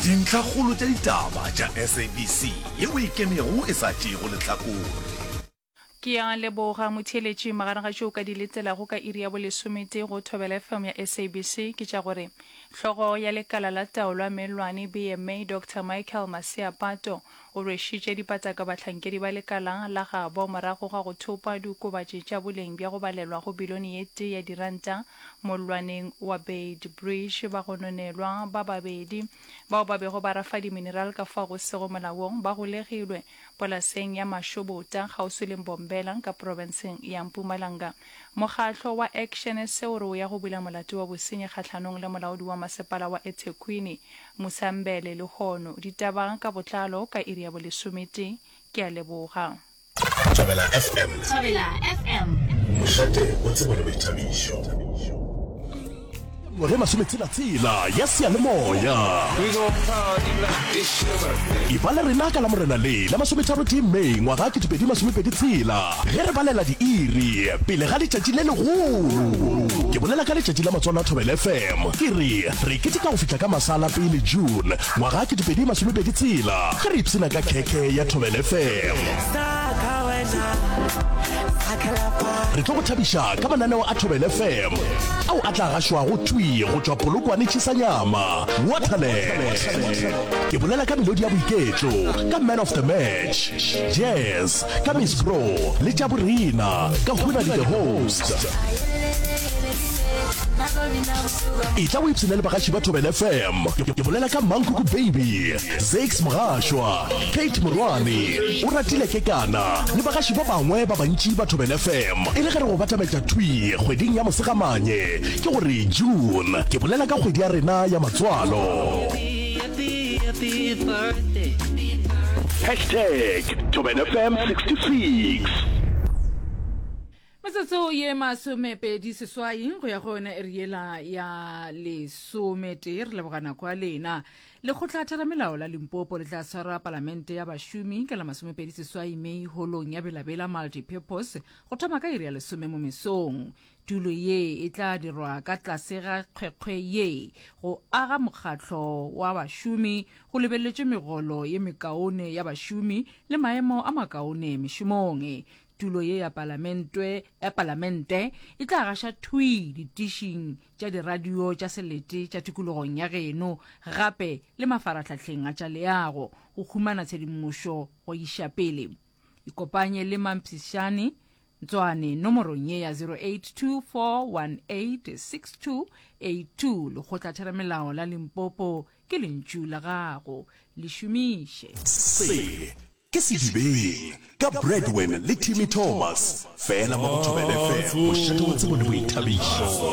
Dintlhakgolo tša ditaba tša SABC ye o e kenego e sa tšeego lehlakore. Ke a leboga motheeletši. Magareng ga tše o ka di letelago ka iri ya bolesometee go Thobela FM ya SABC ke tša gore, Hlogo ya lekala la taolo ya meelwane, BMA, Doctor Michael Maseapato, O rwešitše dipataka bahlankedi ba lekala la gabo morago ga go thopa diokobatši tša boleng bja go balelwa go bilione ye tee ya diranta mollwaneng wa Beitbridge. Bagononelwa ba babedi bao ba bego ba rafa dimineral ka fao go sego molaong ba golegilwe polaseng ya Mashobota kgauswi le Mbombela ka profenseng ya Mpumalanga. Mokgatlo wa Action sa o re o ya go bula molato wa bosenyi kgahlanong le molaodi wa masepala wa eThekwini, Musambele, Lehono, ditaba ka botlalo ka iri ya bolesometee. Ke a leboga. Thabela FM. Thabela FM. Mošate o tsebo le boithabišo. Ngwaga ya masometshela-tshela ya seyalemoya e ba le rena ka la morena le la masometharotee May ngwaga 2023. Ge re balela diiri pele ga letšatši le legolo, ke bolela ka letšatši la Matswalo a Thobela FM, ke re re keteka go fihla ka masala pele June ngwaga ke 2020 tshela ge re ipshina ka khekhe ya Thobela FM. Re tlo go thabiša ka mananeo a Thobela FM ao a tla gašwago thwi go tšwa Polokwane Tšhisanyama, Waterland. Ke bolela ka melodi ya boiketlo, ka Man of the Match, Jazz, ka miss bro le tša borena ka hona di the host e tla o ipshine le bagaši ba tobel fm ke bolela ka mankuku baby zax mogašwa kate morwane o ratile ke kana le bagaši ba bangwe ba bantši ba tobel fm e le ge re go batametša twi kgweding ya mosegamanye ke gore june ke bolela ka kgwedi ya rena ya matswalo Hashtag Tobin FM 66. metsotso ye masomepedi seswai go ya go yona e re yela ya lesometee re leboga nako ya lena lekgotla theramelao la limpopo le tla swara palamente ya bašomi ka la masomepedi seswai mei holong ya belabela multipurpose go thoma ka iri ya lesome mo mesong Tulo ye e tla dirwa ka tlase ga kgwekgwe ye go aga mokgatlo wa bašomi go lebeletšwe megolo ye mekaone ya bašomi le maemo a makaone mešomong. Tulo ye ya Palamentwe ya Palamente e tla gaša thwii ditišing tša diradio tša selete tša tikologong ya geno gape le mafarahlahleng a tša leago go humana tshedimošo go iša pele. Ikopanye le mampshišani Ntswane nomorong ye ya 0824186282. Lekgotlatheramelao la Limpopo ke lentšu la gago. Le šomiše. Se ke Sedibeng ka Bradwin le Timmy Thomas, fela mo go Thobela FM, bošate wa tsebo le boithabišo.